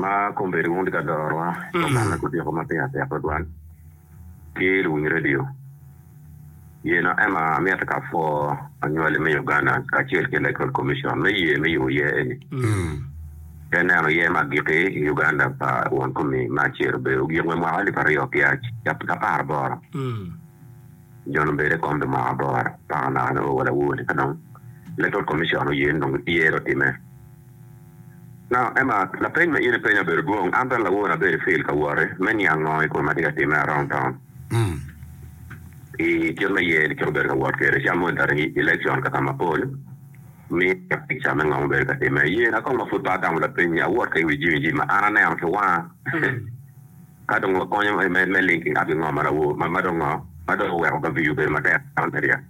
Ma kombeddi wun tye ka dorowa dok manna gudyeko ma piny atek tutwal ki luwiny redio. Yena ema amyero ka pwo anywali me Uganda kacel ki Electoral Commission me ye me yubo yer eni te neno yer me agikki i Uganda pa won kumi me acel obedo ogik me mwaka alip aryo ki apar aboro nyo dong bedi kom pi mwaka aboro paka naka nongo wa lawur ka dong Electoral Commission oye ni dong yer otime. Na. Emma, lapeny ma in ipenyo obedo dwong. An bene lawor abedo i fil ka woti me niang ngo i kom ma tye ka timme arong taun i kit me yer ki obedo ka wot kwede cam moni tari i election ka ka ma pol miya picture me ngo mubedo ka timme i yer na kong ma pud pe atamo lapeny ni awot ka i wi Jimmy Jimmy ma an aneno ki wanga ka dong wakonyo me linking up ki ngo ma dong oweko ka view obedo matek.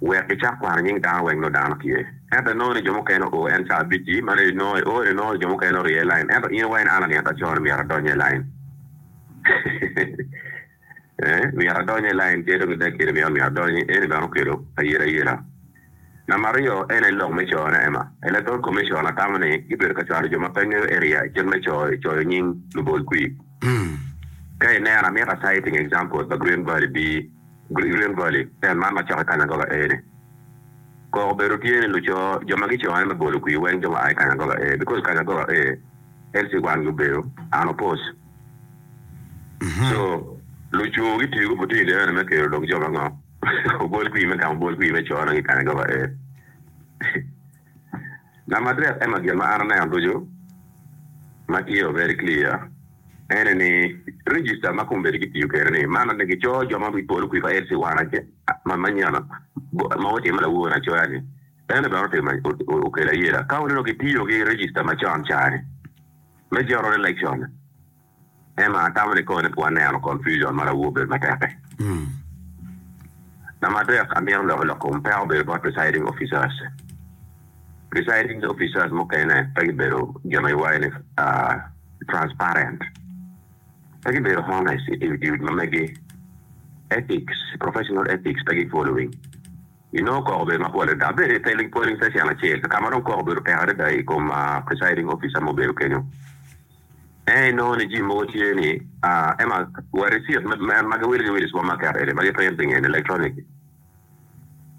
wek gicak kwano nying dano weng nongo dano tye. Ento inongo ni jo mukene oo en caa abic-ci, ma reco nongo eo ni nongo jo mukene orye i lain, ento in wa in an anito acoo ni myero adonye i lain. Eeh, myero adonye i lain tye dong i dakki ni myero myero adonye. Eni bene okelo ayerayera. Namba aryo en aye lok me coo ne Emma. Electoral Commission atamo ni gibedo ka cwalo jo ma pe ngeyo area i kit me coo i coyo nying lubol kwir. Ka ineno, amito a citing examples pa Green Valley bee. Green River Valley, en man macok i kany agoba A ni. Koko obedo tye ni luco jo ma gico en me bolo kwir weng jo ma a i kany agoba A because kany agoba A en ci wan gi obedo unopposed so luco gitiyo ki opportunity eno ni me kelo dong jo ma ngo obol kwir me gamo obol kwir me co na ki i kany agoba A. Lamadrid Emma Gin ma an aneno ducu ma tye very clear ene ni register ma kombeddi kitiyo kwede ni man ni gico jo ma wi polo kwi pa LC one ace ma manyono ma otime lawor acoya ni ene bene otimo okelo ayela ka oneno kitiyo ki register macon cani me general election Emma, atamo ni koni pwod aneno confusion ma lawoo bedo matek-ki. Namba adek, amito loko lok kom peko bedo bot presiding officers. Presiding officers mukene pe gibedo gin ma iwaco ni transparent, pe gibedo honest i timo duty ma megi, ethics, professional ethics pe gi following. Inongo koko obedo mapol adada, abedo i pele polling station acel ka ma dong koko obedo tek adada i kom presiding officer ma obedo kenyo. Ento inongo ni jami mogo tye ni, ema wa risit ma giwilo ki wil i supamaket eni ma giprinto i ngeye ni electronic.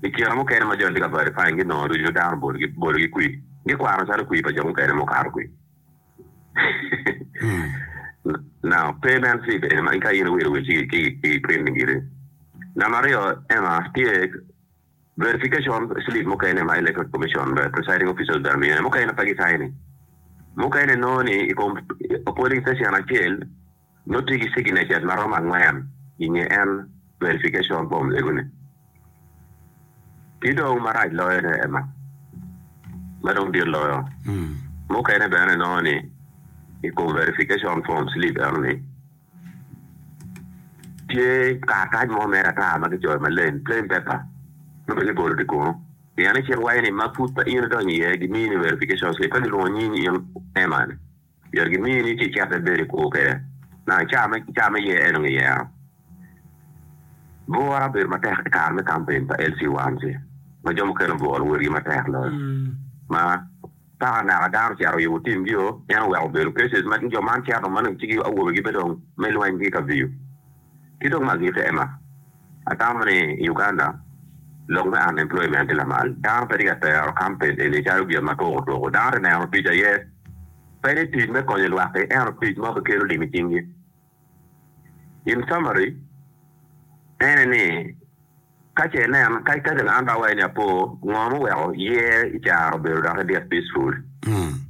I kine mukene ma joni tye ka verifying ki nongo ducu dano bolo ki kwir, gikwano calo kwir pa jo mukene ma okato kwir. Now pe meno slip eni ma ka in iwilo wil ci ki printing giri. Namba aryo ema tye. Verification slip mukene ma Electoral Commission Presiding Officer obeda miyone mukene pe gicayone. Mukene inongo ni i kom polling station acel nongo tye ki signatures ma romo angwen i nge en verification form egone. Ki dong marac loyone ema ma dong dit loyo, mukene bene inongo ni i kom verification form slip enoni, Tye karatac mo mere ata ma kicoyo maleng, plain paper, nongo bene kibolo tye kunu. Pien i cik waco ni ma pud pe in idonyo iye, gimiyi ni verification slip, ka gilwongo nying in Emma ni, myero gimiyi ni ci icit ibedo i kwo kwede nang i caa me caa me yer enongo iyero. Bwura obedo matek i kare me campaign pa LC1C ma jo mukene obwolo wotgi matek loyo ma. Ka anaka dano ocito i ot timgio, en oweko bedo Persis ma jo man cito, ma dong cigi awobe gibedong me lweny ki Kaviyo. Ki dong ma agikki, Emma, atamo ni i Uganda, lok me unemployment tye lamal. Dano pe tye ka tero kamped eni calo gin ma tuko tuko. Dano tye neno tic aye. Pe ni tic me konyo lwak-ki, ento tic mo keken olim i cinggi. In summary, ene ni, Ka ce inen, ka ikaden an dawayi ni apo, ngo ma oweko year i caro obedo dok idyek peaceful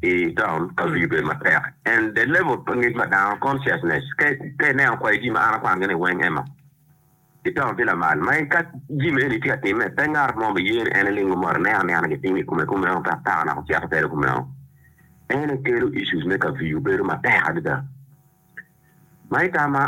i town ka wii obedo matek and the level pa ngec ma dano, consciousness, ka ineno kwayo jami ma an akwano gi ni weng Emma. Kidongo ki lamal ma en ka jami maeni tye ka timme, pe ngat mo biye ni en iling omot anena anena gitimo i kome kumeno ka taka naka ocito tere kumeno. Ene kelo issues me kaviyu bedo matek adada. Ma i tam ma